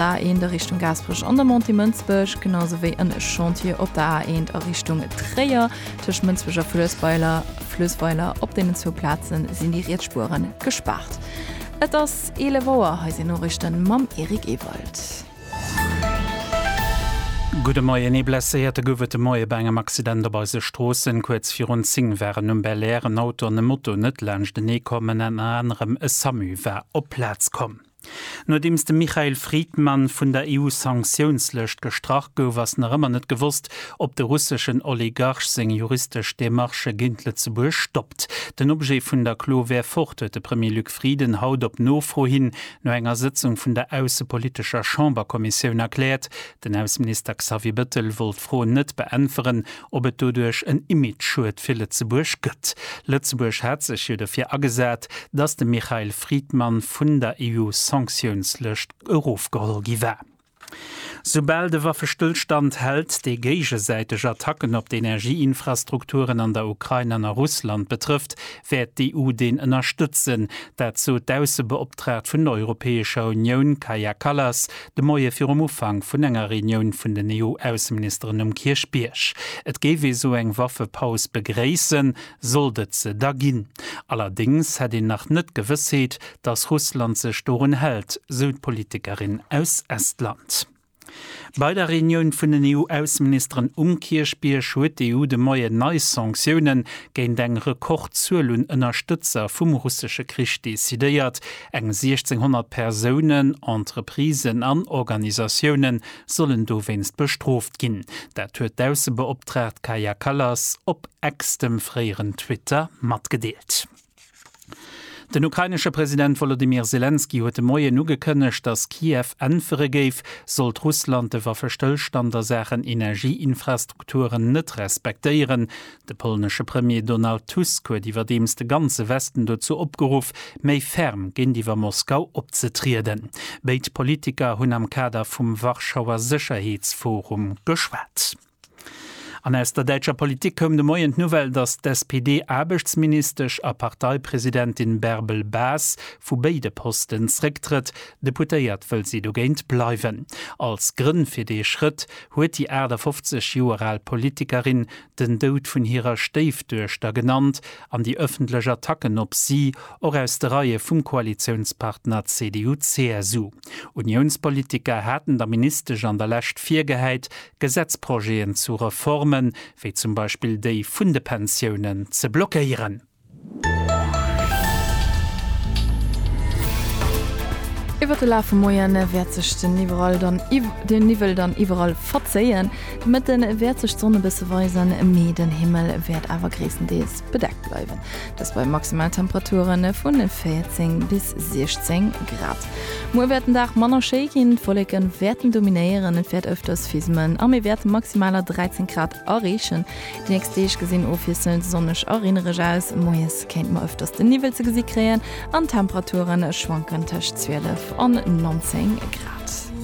A1 a Richtung Gaasperech an der Montée Mënsbech, genau sou wéi en Chantier op der A1 a Richtung Tréier tëscht Mënsbech a Fluessweiler, Fluessweiler. Op deenen zwou Plaze sinn déi riets Spueren gespaart. Et ass 11 Auer, hei sinn Noriichten mam Eric Ewald. Gudde Moien, Ee Blesséierte gouf et de Moie bei engem Accident op eise Stroossen. Kuerz virun 10 waren um Belair en Auto an e Moto net laanschtenee komm, ënner anerem e Samu war op d'Plaz komm. Nodeems de Michail Fridman vun der EU-Sanktiounslëscht gestrach gouf, ass nach ëmmer net gewosst, ob de russeschen Oligarch seng juristesch Demarchë géint Lëtzebuerg stoppt. Den Objet vun der Klo wär fort, huet de Premier Luc Frieden haut op Nofro hin no enger Sëtzung vun der aussepolitescher Chamberkommissioun erkläert. Den Ausseminister Xavier Bettel wollt d'Fro net beäntweren, ob et doduerch en Image-Schued fir Lëtzebuerg gëtt. Lëtzebuerg hat sech jo derfir agesat, datt de Mikhail Fridman vun der EU-Sanktiounslëscht erofgeholl gi war. Soubal de Waffestëllstand hält, dee géigesäiteg Attacken op d'Energie-Infrastrukturen an der Ukrain an a Russland betrëfft, wäert d'EU deen ënnerstëtzen. Dat sot d'Aussebeoptraagt vun der Europäescher Unioun, Kaja Kallas, De Moie virum Ufank vun enger Reunioun vun den EU-Ausseministeren um Kierchbierg. Et géif ee sou eng Waffepaus begréissen, sollt et se da ginn. Allerdéngs hätt een nach net d'Gewëssheet, datt Russland sech dorun hält, sou d'Politikerin aus Estland. Bei der Reunioun vun den EU-Ausseministeren um Kierchbierg huet d'EU de Moien nei Sanktioune géint eng Rekordzuel un Ënnerstëtzer vum russesche Krich decidéiert, Eng 1.600 Persounen, Entreprisen an Organisatioune sollen dowéinst bestrooft ginn. Dat huet d'Aussebeoptraagt Kaja Kallas op Ex, dem fréieren Twitter, matgedeelt. Den ukrainesche President Wolodymyr Selenskyj huet de Moien ugekënnegt, datt Kiew äntwere géif, sollt Russland de Waffestëllstand a Saachen Energieinfrastrukturen net respektéieren. De polnesche Premier Donald Tusk huet iwwerdeems de ganze Westen dozou opgeruff, méi ferm géintiwwer Moskau opzetrieden. Béid Politiker hunn am Kader vum Warschauer Sécherheetsforum geschwat. An aus der däitscher Politik koum de Moien d'Nouvelle, datt d'SPD-Aarbechtsministesch a Parteipresidentin Bärbel Bas vu béide Posten zrécktrëtt. Deputéiert wëll si dogéint bleiwen. Als Grënn fir dee Schrëtt huet déi 58 Joer al Politikerin den Doud vun hirer Stéifduechter genannt an déi ëffentlech Attacken op si, och aus de Reie vum Koalitiounspartner CDU-CSU. Uniounspolitiker haten der Ministesch an der Lescht virgehäit, Gesetzprojeten zu Reformen, wéi zum Beispill déi vun de Pensiounen, ze blockéieren. Iwwert de Laf vum Moiane wäert sech den iwwerall dann den Niwwel dann iwwerall verzéien. De Mëtte wäert sech d'Sonn e bësse weisen, mee den Himmel wäert awer gréisstendeels bedeckt bleiwen. Dëst bei Maximaltemperature vun 14 bis 16 Grad. Muer wäert den Dag manner schéi ginn, d'Wolleke wäerten dominéieren, et wäert ëfters fismen a mir wäerte Maximaler 13 Grad areechen. D'nächst Deeg gesinn ofwiesselnd sonneg a reenereg aus. Moies kéinte mer ëfters de Niwwel ze gesi kréien an d'Temperature schwanken tëscht 12 an 19 Grad.